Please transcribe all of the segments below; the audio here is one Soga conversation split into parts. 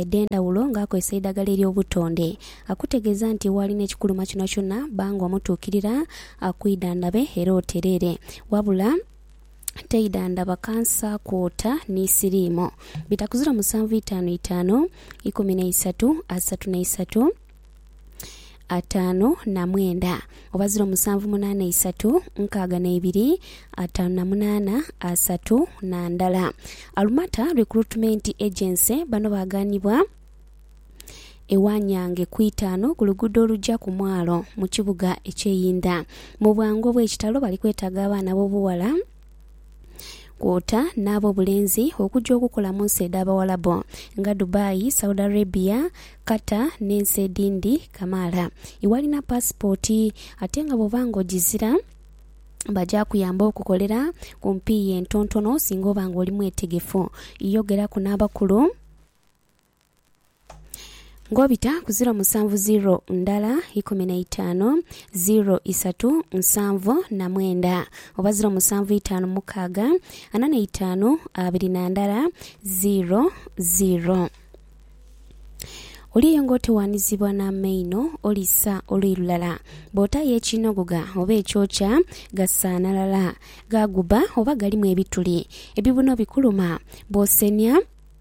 edh'endhawulo ng'akozesa eidhagala ery'obutonde. Akutegeeza nti waali n'ekikuluma kyonakyona, ba ng'omutuukirira, akwidhandhabe era otereere. Wabula teidhandhaba kansa, kwota ni siriimu. Bitakuzira musanvu itaanu itaanu ikumi na isatu asatu na isatu. ataanu na mwenda oba ziro musanvu munaana isatu nkaaga n'eibiri ataanu na munaana asatu na ndala. Alumata Recruitment Agency bano baaganibwa e Wanyange ku itaanu ku luguudo oluja ku mwalo mu kibuga eky'e Inda. Mu bwangu obw'ekitalo bali kwetaaga abaana b'obughala kwota n'ab'obulenzi okuja okukola mu nsi edh'Abawalabu nga Dubai, Saudi Arabia, Qatar n'ensi edhindhi kamaala. Iwalina paasipooti ate nga bw'oba nga ogizira baja kuyamba okukolera ku mpiiya entontono singa oba nga oli mwetegefu. Yogeraku n'abakulu. Ng'obita ku ziro musanvu ziro ndala ikumi na itaanu ziro isatu nsanvu na mwenda oba ziro musanvu itaanu mukaaga ana na itaanu abiri na ndala ziro ziro. Oli eyo ng'otewaanizibwa n'amaino oli sa oluyi lulala. Bw'otaayo ekinogogha oba ekyokya, gasaanalala, ghaguba oba galimu ebituli, ebibuno bikuluma. Bw'osenia,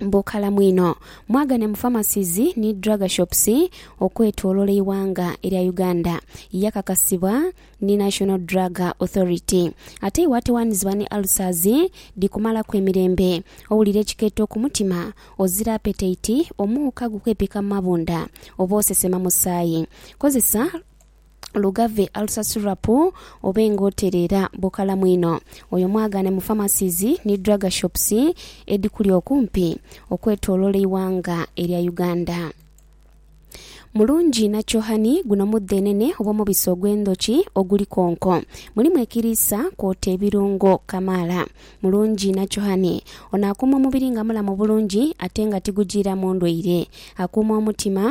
bukalamu inho. Mwagane mu Pharmacies ni Drug Shops okwetolola eighanga erya Uganda. Yakakasibwa ni National Drug Authority. Ate iwe atawanizibwa ni ulcers dhikumalaku emirembe, owulira ekikeeto ku mutima, ozira appetite, omuuka gukwepika mu mabunda oba osesema musaayi, kozesa. lugave alusasulirapu obe nga otereera bukalamu inho. Oyo mwagaane mu pharmacies ni drug shops edhikuli okumpi okwetoloola eighanga erya Uganda. Mulungi nakyo honey, guno mudhenene oba omubisi ogw'endhoki oguli konko. Mulimu ekiriisa kwota ebirungo kamaala. Mulungi nakyo honey ono akuuma omubiri nga mulamu bulungi ate nga tigujiiramu ndwaire. Akuuma omutima.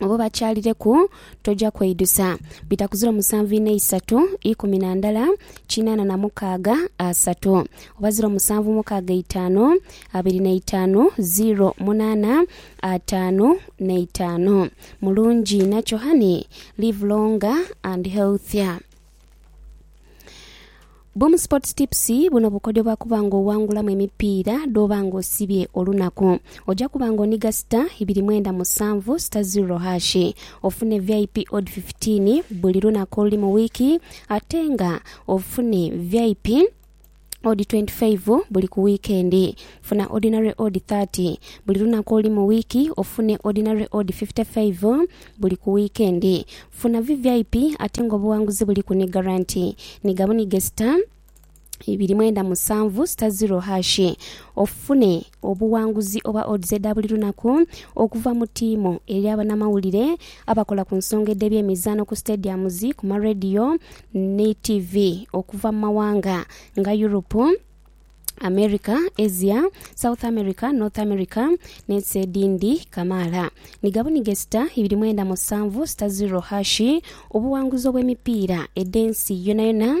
obo bakyalireku, toja kweidusa. Bitakuzira omusanvu ina isatu ikumi na ndala kinaana na mukaaga asatu oba ziro musanvu mukaaga itaanu abiri na itaanu ziro munaana ataanu na itaanu. Mulungi inha kyo honey, live longer and healthier. Boom Sports Tips buno bukodyo bwa kuba nga owangulamu emipiira dhoba nga osibye olunaku. Oja kuba nga oniga star ibiri mwenda musanvu star zero hash ofune VIP odd 15 buli lunaku oluli mu wiiki ate nga ofune VIP odi twenti faivu buli ku wiikendi. Funa odinale odi thirty buli lunaku olu mu wiiki ofune odinale odi fifite faivu buli ku wiikendi. Funa VVIP ate ng'obuwanguzi buliku ni garanti. Niga buniga sita ibiri mwenda musanvu sita ziro hashi ofune Obuwanguzi oba odds edha buli lunaku okuva mu tiimu, eri abanamawulire, abakola ku nsonga edh'ebyemizaano ku stadiums, ku ma radio ni TV okuva mu mawanga nga Europe, America, Asia, South America, North America n'ensi edhindi kamaala. Ni gabunige sita ibiri mwenda musanvu sita ziro hashi obuwanguzi obw'emipiira edh'ensi yonayona.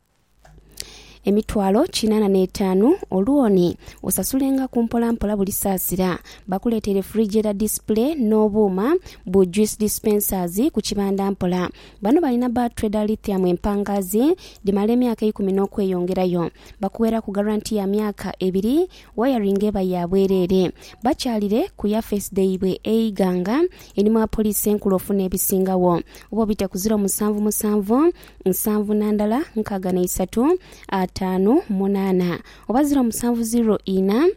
emitwalo kinaana n'etaanu o looni, osasulengaku mpola mpola buli saasira. Bakuleeta refrigerator display n'obuuma bu juice dispensers ku kibanda mpola. Bano balina ba Trader Lithium empangaazi dhimala emyaka eikumi n'okweyongerayo. Bakuweeraku garanti ya myaka ebiri, wayaringi eba ya bwereere. Bakyalire ku yafeesi dhaibwe e Iganga, einhuma wa poliisi enkulu ofuna ebisingagho. Oba obite ku ziro musanvu musanvu nsanvu na ndala nkaaga na isatu ataanu munaana oba ziro musanvu ziro ina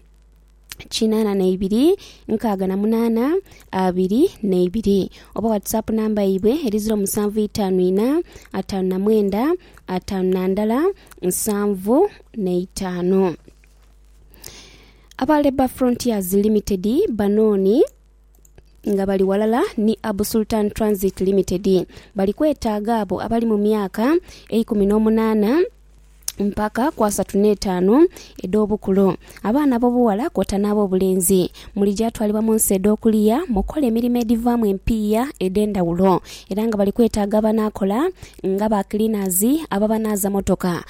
kinaana na ibiri nkaaga na munaana abiri na ibiri oba whatsapp namba yaibwe eri ziro musanvu itaanu ina ataanu na mwenda ataanu na ndala nsanvu na itaanu aba Labour Frontiers Limited banooni nga bali ghalala ni Abu Sultan Transit Limited bali kwetaaga abo abali mu myaka eikumi n'omunaana mpaka ku asatu n'etaanu edh'obukulu, abaana ab'obughala kwota n'ab'obulenzi. Muli gyatwalibwa mu nsi edh'okuliya mu kukola emirimo edhivaamu empiiya edh'endhawulo era nga bali kwetaaga abanaakola nga ba cleaners, ababanaaza mmotoka,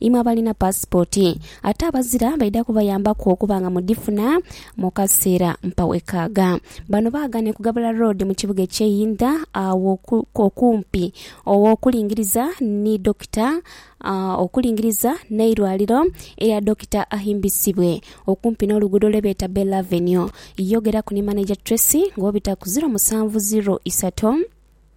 Imwe abalina paasipooti ate abazira baidha kubayambaku okuba nga mudhifuna mu kaseera mpawekaaga. Bano baagana ekugabula loodi mu kibuga eky'e Inda agho okumpi okulingiriza ni Dokita okulingiriza n'eirwaliro erya Dokita Ahimbisibwe okumpi n'oluguudo lwe beeta Bell Avenue. Yogeraku ni Maneja Tracy ng'obita ku ziro musanvu ziro isato.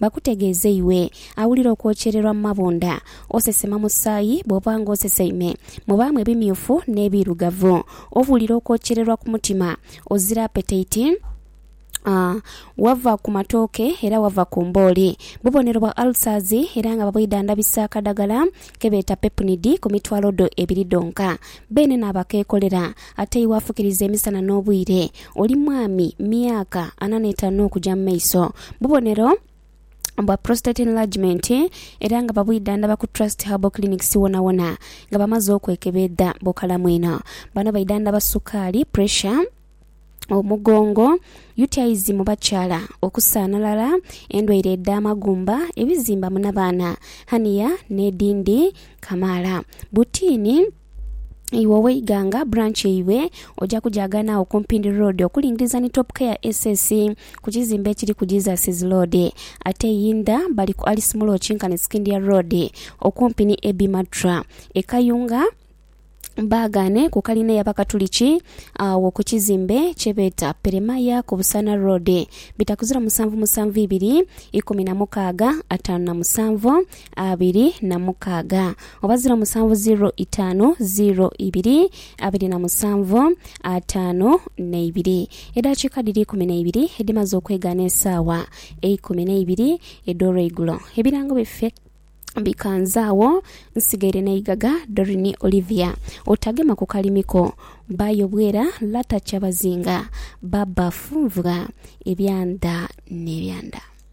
Bakutegeeze iwe awulira okwokyererwa mu mabunda, osesema musaayi bw'oba ng'oseseime mu baamu ebimyufu n'ebiirugavu, owulira okwokyererwa ku mutima, ozira apetaiti, wava ku matooke era wava ku mbooli. Bubonero bwa ulcers era nga babwidhandhabisa akadagala ke beeta Pepnid ku mitwalo dho ebiri dhonka. Beene n'abakeekolera Ate iwe afukiriza emisana n'obwire, oli mwami, myaka ana n'etaanu okuja mu maiso. Bubonero bwa prostate enlargement era nga babwidhandhaba ku Trust Herbal Clinics wonawona nga bamaze okwekebeedha bukalamu inho. Bano baidhandhaba sukaali, pressure, omugongo, UTIs mu bakyala, okusaanhalala, endwaire edh'amagumba, ebizimba mu nabaana, hernia n'edhindhi kamaala. Butiini. Iwe ow'eighanga, branch yaibwe oja kugyaganhagho ku Mpindi Road okulingiriza ni Top Care SS ku kizimbe ekiri ku Jesus's Road. Ate eyindha bali ku Alice Mulo okinkane Scindia Road okumpi ni Abbey Matra. E Kayunga baagaane ku kalina ey'Abakatuliki agho ku kizimbe kye beeta Peremaya ku Busaana Road. Bitakuzira musanvu musanvu ibiri, ikumi na mukaaga, ataanu na musanvu. abiri na mukaaga oba ziro musanvu ziro itaanu ziro ibiri abiri na musanvu ataanu n'eibiri. Edaakiika dhiri ikumi n'eibiri edhimaze okwegaana esaawa eikumi n'eibiri edh'olweigulo, ebirango byaffe bikanze agho. Nsigaire n'eigaga Doreen Olivia Otagema ku kalimiko, bba Yobwera Latta Kyabazinga, bba Funvwa, ebyanda n'ebyanda.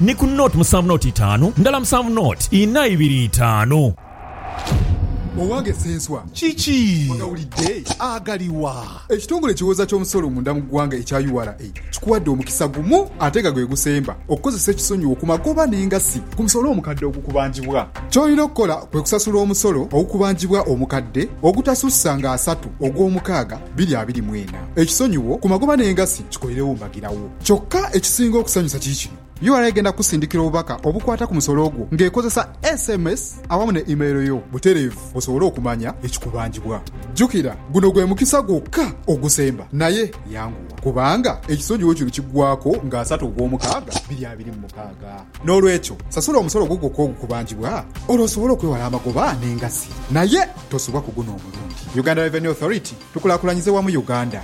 Ni ku nought musanvu nought itaanu ndala musanvu nought inha ibiri itaanu. Owange Ssenswa, kiki ogawulidde? Agaliwa? Ekitongole ekiwooza ky'omusolo munda mu ggwanga ekya ura kikuwadde omukisa gumu ate nga gwe gusemba okukozesa ekisonyiwo ku magoba n'engassi ku musolo omukadde ogukubanjibwa. Ky'olina okukola kwe kusasula omusolo ogukubanjibwa omukadde ogutasussa nga asatu ogw'omukaaga bbiri abiri mu ena. Ekisonyiwo ku magoba n'engassi kikolerewo mbagirawo. Kyokka ekisinga okusanyusa kiri kino, ura egenda kukusindikira obubaka obukwata ku musolo gwo ng'ekozesa sms awamu ne imeero yo butereevu osobole okumanya ekikubanjibwa. Jjukira, guno gwe mukisa gwokka ogusemba, naye yanguwa kubanga ekisonjiwo kino kiggwaako nga asatu ogw'omukaaga biri abiri mu mukaaga. N'olwekyo, sasula omusolo gwo gwokka ogukubanjibwa olwo osobole okwewala amagoba n'engassi naye tosubwa ku guno omulundi. Uganda Revenue Authority, Tukulaakulanyize wamu Uganda.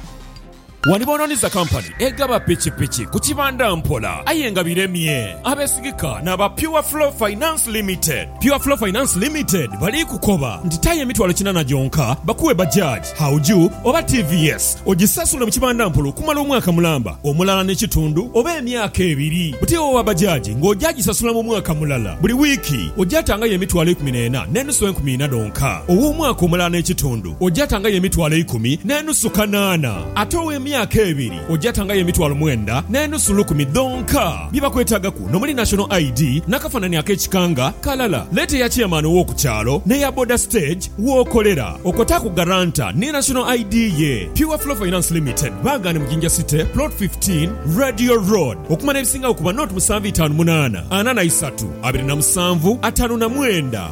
Wali boononiza kampani egaba pikipiki ku kibanda mpola aye nga biremye abeesigika n'aba Pure Flow Finance Limited. Pure Flow Finance Limited bali kukoba nti tayo emitwalo kinana gyonka bakuwe Bajaj, Hauju oba TVS ogisasule mu kibanda mpola okumala omwaka mulamba, omulala n'ekitundu oba emyaka ebiri. Buti owa Bajaj ng'oja gisasula mu mwaka mulala. Buli wiiki oja tangayo emitwalo ikumi n'ena n'enusu enkumi ina dhonka ow'omwaka omulala n'ekitundu. ojatangayo emitwalo eikumi n'enusu kanaana, ate ow'emyaka ebiri ojatangayo emitwalo mwenda n'enusu lukumi dhonka. Bye bakwetaagaku n'omuli National ID n'akafanani ak'ekika nga kalala. Leeta eya Chairman ow'oku kyalo n'eya boda stage w'okolera. Okotaaku Guarantor ni National ID ye. Pure Flow Finance Limited, Baagane mu Jinja City, Plot 15, Radio Road. Okumanya ebisingagho kuba nought musanvu itaanu munaana, ana na isatu, abiri na musanvu, ataanu na mwenda.